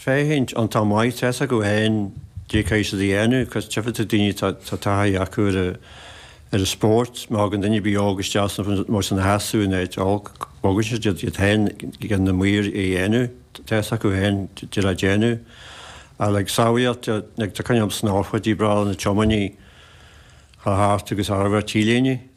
féachaint an tá maith tá fhios acu féin cad é tá siad a dhéanamh. Cad tchífidh tú daoine tá taithí acu ar an spórt. Má thagann duine ar bith óg isteach san mar sin a sheasamh in áit olc bogann siad iad iad féin gan na maoir a dhéanamh. Tá fhios acu féin cad é le déanamh. Al ag sábháilteacht ag tá coinneal snámh chuid í bra na tiománaí chá thart agus arbh ar T-léine.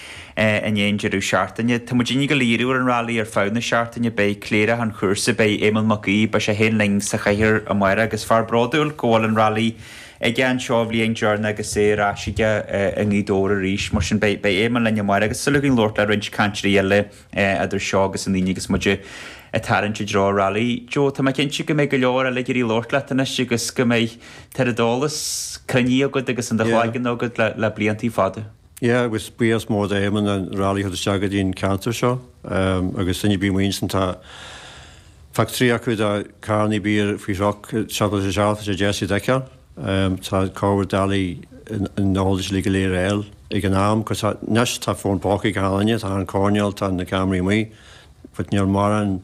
in aon deireadh seachtaine. Tá muid uilig go léir ar an rally ar feadh na seachtaine. Beidh cléireach an chúrsa, beidh Éamon Mac Aoidh, beidh sé féin linn sa chathaoir amáireach agus fear bródúil go bhfuil an rally aige anseo i mbliana dearna agus é ar ais aige i nGaoth Dobhair arís. Mar sin beidh Éamon linn amáireach agus súil againn labhairt le roinnt cainteoirí eile idir seo agus an Aoine agus muid ag tarraingt i dtreo rally. Joe, tá mé cinnte go mbeidh go leor eile ag iarraidh labhairt leat anois agus go mbeidh, tá an oiread eolais cruinnithe agat agus in do chloigeann agat le bliantaí fada. Yeah, agus buíochas mór do Éamonn an rally a thabhairt isteach go dtí an ceantar seo, agus sinne baí muinn san, tá factory acu do cannaí beer food truck, chocolate shop, tá sé deas iad a fheiceáil, tá corruair dalaí in Noel is lí go léir eil ag an am, cos tá, anois tá fón póca ag a h-ailne, tá an coirnéal, tá na cameraí amuigh, but níl mórán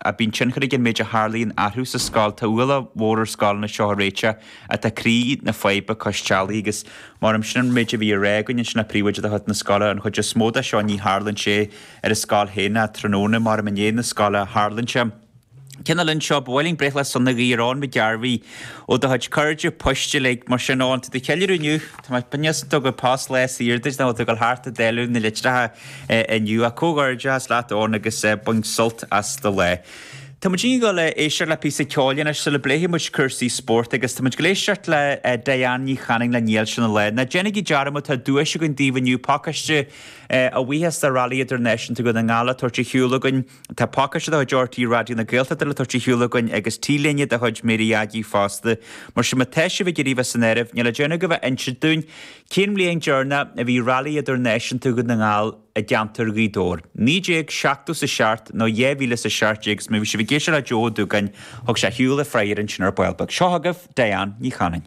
a Bíonn tionchar ag an méid a tharlaíonn orthu sa scoil. Tá ualach mór ar scoileanna seo a réiteach ach tá croí na faidhbe cois teallaigh agus mar sin an méid a bhí á rá againn ansin ná príomhoide de chuid na scoile an chuid is mó de seo ní tharlaíonn sé ar an scoil féin ná tráthnóna mar i ndiaidh na scoile a tharlaíonn sé. Lena linn seo, ba mhaith linn breithlá sona a ghuí ar Eoin McGarvey ó do chuid cairde poist uilig. Mar sin, Eoin, tá tú ag ceiliúradh inniu, cá bhfios an dtug an Post lá saor duit nó an bhfuil tú ag dul thart ag dáileadh na litreacha. inniu. Comhghairdeas leat, Eoin, agus bain sult as do lá. Tá muid ag dul a éisteacht le píosa ceoil anois sula bpléifidh muid cúrsaí spóirt agus tá muid ag éisteacht le Diane Ní Chanainn le Níl Sé ina Lá. Ná déanaigí dearmad, tá duais againn daoibh inniu, pacáiste a bhuíochas de Rally Idirnáisiúnta Dhún na nGall le tabhairt ar shiúl againn. Tá pacáiste de chuid RTÉ Raidió na Gaeltachta le tabhairt ar shiúl againn agus T-léine de chuid Mary Aggie fosta. Mar sin má tá sibh ag iarraidh bheith san áireamh, níl le déanamh agaibh ach insint dúinn Cén bhliain dheireanach a bhí Rally Idirnáisiúnta Dhún na nGall i gceantar Ghaoth Dobhair? Naoi déag seachtó sa seacht nó dhá mhíle sa seacht déag is má bhí sibh ag éisteacht le Joe Ó Dúgáin, thug sé ar shiúl an freagra ansin ar ball beag. Seo agaibh Diane Ní Chanainn.